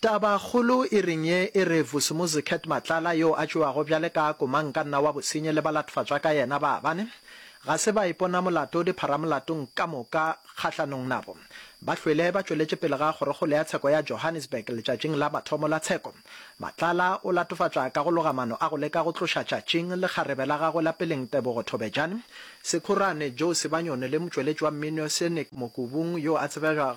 Tabakgolo e reng ye e re Vusimuzi Cat Matlala yo a tšewago bjale ka komankanna wa bosenyi le balatofacwa ka yena ba bane ga se baipona molato dipharamolatong ka moka kgahlanong nabo ba hlwele ba tšweletše pele ga kgorokgolo ya tsheko ya Johannesburg letšatšing la mathomo la tsheko Matlala o latofatšwa ka go loga mano a go leka go tloša tšatšing le kgarebe la gagwe la peleng Tebogo Thobejane Sekhurane Joe Sebanyoni le motšweletši wa mmino Senick Mokubung yo a tsebegago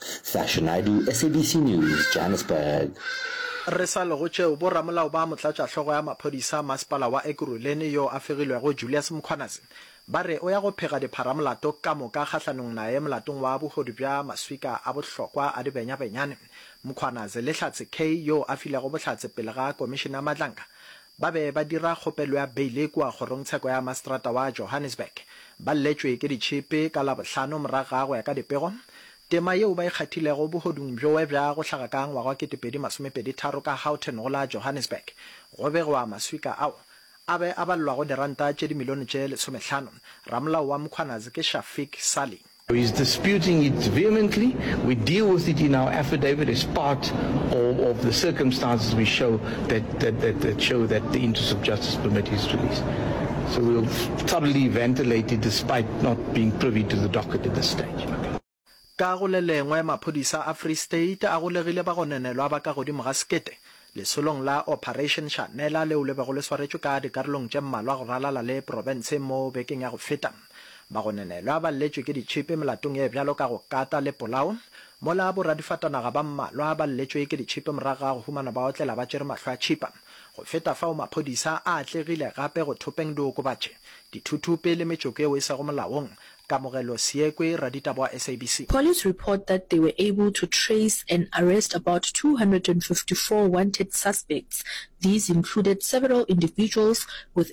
Sasha Naidoo, SABC News, Johannesburg. Re sa le go tšeo, bo ramolao ba motlatšahlogo ya maphodisa a masepala wa Ekurhuleni yo a fegilwego Julius Mkhwanazi ba re o ya go phega dipharamolato ka moka kgahlanong naye molatong wa bohodu bja maswika a bohlokwa a dibenyabenyane. Mkhwanazi le Hlatse Kay yo a filego bohlatse pele ga Komišene ya Madlanka ba be ba dira kgopelo ya beile kua kgorongtsheko ya maseterata wa Johannesburg, ba lletšwe ke ditšhipi ka Labohlano morago ga go ya ka dipego. Tema yeo ba e kgathilego bohodung bjoe bja go hlaga ka ngwaga wa 2023 ka Houghton go la Johannesburg, go begwa maswika ao a be a balelwa go diranta tše dimilione tše lesomehlano. Ramolao wa Mkhwanazi ke Shafik Salie. He is disputing it vehemently. We deal with it in our affidavit as part of, of the circumstances we show that, that, that, that show that the interests of justice permit his release. So we'll thoroughly ventilate it despite not being privy to the docket at this stage. Ka go le lengwe, maphodisa a Free State a golegile bagononelwa ba ka godimo ga sekete lesolong la Operation Shanela leo le bego le swaretšwe ka dikarolong tše mmalwa go ralala le profense mo bekeng ya go feta. Bagononelwa ba lletšwe ke ditšhipi melatong ye bjalo ka go kata le polao, mola boradifatanaga ba mmalwa ba lletšwe ke ditšhipi morago ga go humana ba otlela ba tšere mahlo a tšhipa. Go feta fao, maphodisa a atlegile gape go thopeng diokobatši, dithuthupi le metsoko yeo e sego molaong. Kamogelo Seekwe, raditaba wa SABC. Police report that they were able to trace and arrest about two hundred and fifty four wanted suspects, these included several individuals with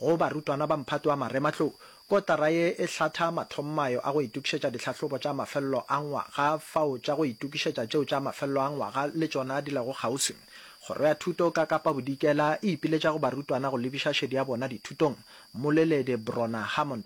Go barutwana ba Mphato wa Marematlou, kotara ye e hlatha mathommayo a go itokišetša dihlahlobo tša mafelelo a ngwaga fao tša go itokišetša tšeo tša mafelelo a ngwaga le tšona di lego kgauswi. Kgoro ya Thuto ka Kapa Bodikela e ipiletša go barutwana go lebiša šedi ya bona dithutong, Mmoleledi Brona Hammond.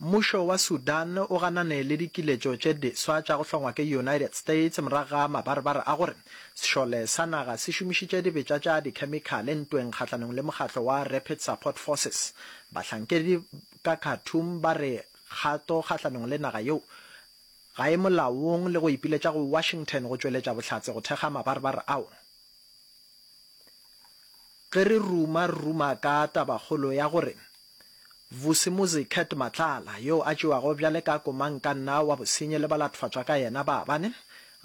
Mmušo wa Sudan o ganane le dikiletšo tše diswa tša go hlongwa ke United States morago ga mabarebare a gore sešole sa naga se šomišitše dibetša tša dikhemikhale ntweng kgahlanong le mokgatlo wa Rapid Support Forces. Bahlankedi ka Khartoum ba re kgato kgahlanong le naga yeo ga e molaong le go ipiletša go Washington go tšweletša bohlatse go thekga mabarebare ao. Ge re ruma, re ruma ka tabakgolo ya gore Vusimuzi Kurt Matlala, yo a tšewago bjale ka komankanna wa bosenyi le balathofatšwa ka yena ba bane,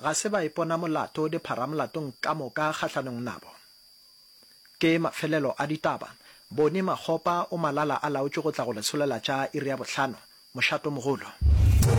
ga se baipona molato dipharamolatong ka moka kgahlanong nabo. Ke mafelelo a ditaba, Boni Makgopa o malala-a-laotšwe go tla go lesolela tša iri ya bohlano, mošatomogolo.